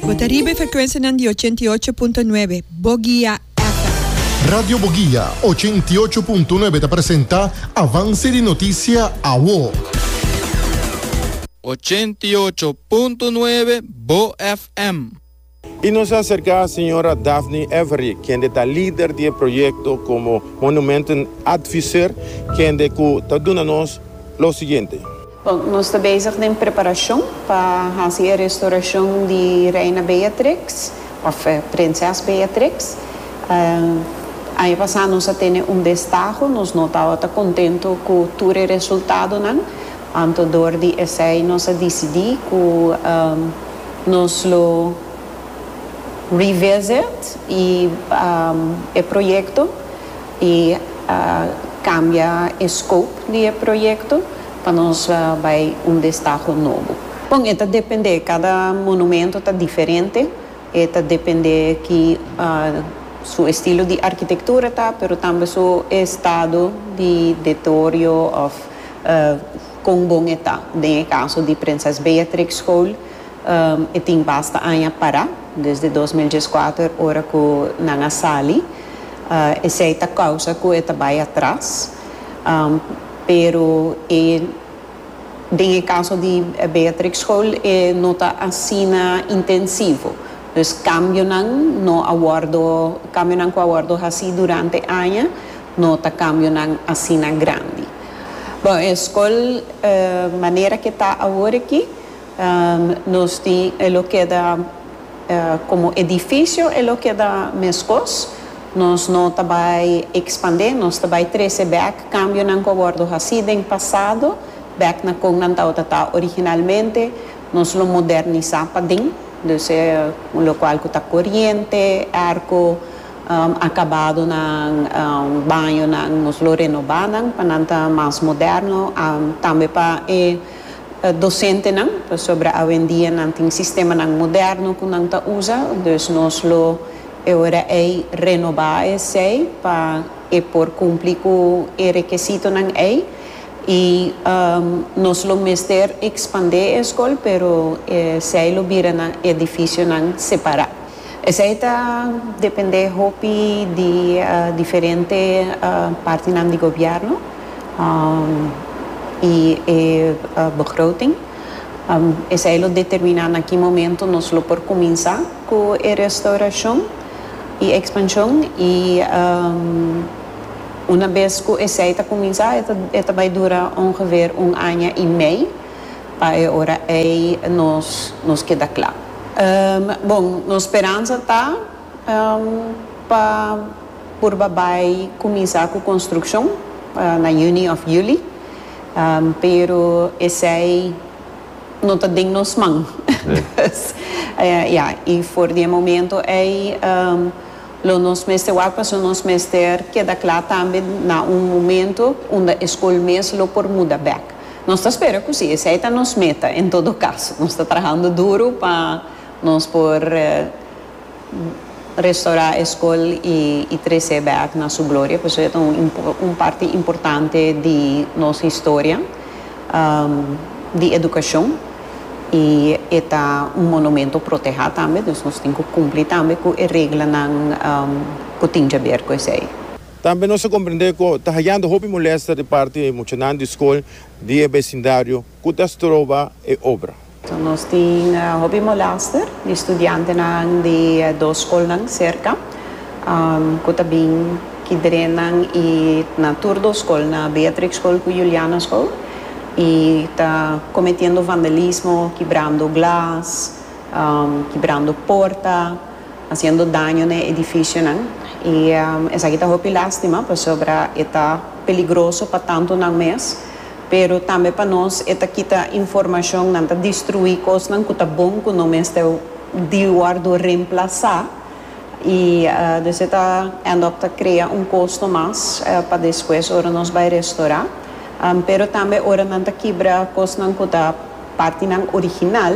Bo ta riba e frekwensianan di ochenta i ocho punto nuebe, Bogia FM. Radio Bogia ochenta i ocho punto nuebe ta presenta Avance di Noticia Awo. Ochenta i ocho punto nuebe, Bo FM. Y nos a acerca a señora Daphne Avery, kende ta lider di e proyecto como Monumenten Advisor, kende cu ta duna nos lo siguiente. Bon, nos ta bezig den preparashon pa hasi e restorashon di Reina Beatrix, òf Prinses Beatrix. Aña pasá nos a tene un destaho, nos no tabatin ta kontentu ku tur e resultadonan, anto dor di esei nos a disidí ku nos lo revisit e proyekto. Y a cambia e scope di e proyecto pa nos bay un destaho nobo. Bon, e ta depende, cada monumento ta diferente, e ta depende ki su estilo di arquitectura ta, pero tambe su estado di deteorio of con bon e ta. Den e caso di Prinses Beatrix School, e tin basta aña para, desde dos mil dieskuater ora cu nan a sali. Esei ta causa cu e ta bay atras. Pero e den e caso di Beatrix School e no ta asina intensivo. Dus cambionan no a wordo, cambionan cu a wordo haci durante aña no ta cambionan asina grandi. Bon, e school manera cu e ta awor aki nos tin e lo keda. Komo edifisio e lo keda meskos, nos no ta bai ekspandé, nos ta bai trese bèk kambionan ku a wòrdu hasí den pasado, bèk na kon nan tabata ta originalmente, nos lo modernisá paden, dus e un lokual ku ta koriente, èrko, akabadonan, bañonan nos lo renobá nan pa nan ta mas moderno, tambe pa e dosentenan, pasobra awendia nan tin sistemanan moderno ku nan ta usa, dus nos lo e ora ei renobá esei pa e por kumpli ku e rekesitonan ei. I nos lo mester ekspandé e skol, pero esei lo bira nan edifisionan separá. Esei ta dependé hopi di diferente partinan di gobièrnu i e begroting. Esei lo determiná na ki momentu nos lo por kuminsá ku e restaurashon i ekspanshon i unabes ku esei ta kuminsá e ta bai dura ongeveer un aña i mei. Pa e ora ei nos nos keda kla. Bon, nos speransa ta pa purba bai kuminsá ku konstrukshon na yüni òf yüli, pero esei no ta den nos man. Pues, ya, i for di e momento ei lo nos mester wak pasobra nos mester keda kla tambe na un momento unda e skol mes lo por muda bèk. Nos ta spera cu si esey ta nos meta, en todo caso, nos ta trahando duro pa nos por restora e scol y trece back na su gloria, pasobra e ta un un parti importante di nos historia di educacion y e ta un monumento proteha tambe, nos tin cu cumpli tambe cu e reglanan cu tin djaber cu esey. Tambe nos a komprendé ku ta hayando hopi molèsta di parti di muchanan di skol di e besindario ku ta stroba e obra. Nos tin hopi molèster di studiantenan di e dos skolnan serka ku ta bin ki drenan i na tur dos skol, na Beatrix Skol ku Juliana Skol, i ta kometiendo vandalismo, kibrando glas, kibrando porta. haciendo daño na e edificionan y esaki ta hopi lastima pasobra e ta peligroso pa tantonan mes pero tambe pa nos e ta kita informacion nan ta destrui cosnan cu ta bon cu no mester di wordo remplaza y dus e ta end up ta crea un costo mas pa despues ora nos bay restora pero tambe ora nan ta kibra cosnan cu ta partinan original.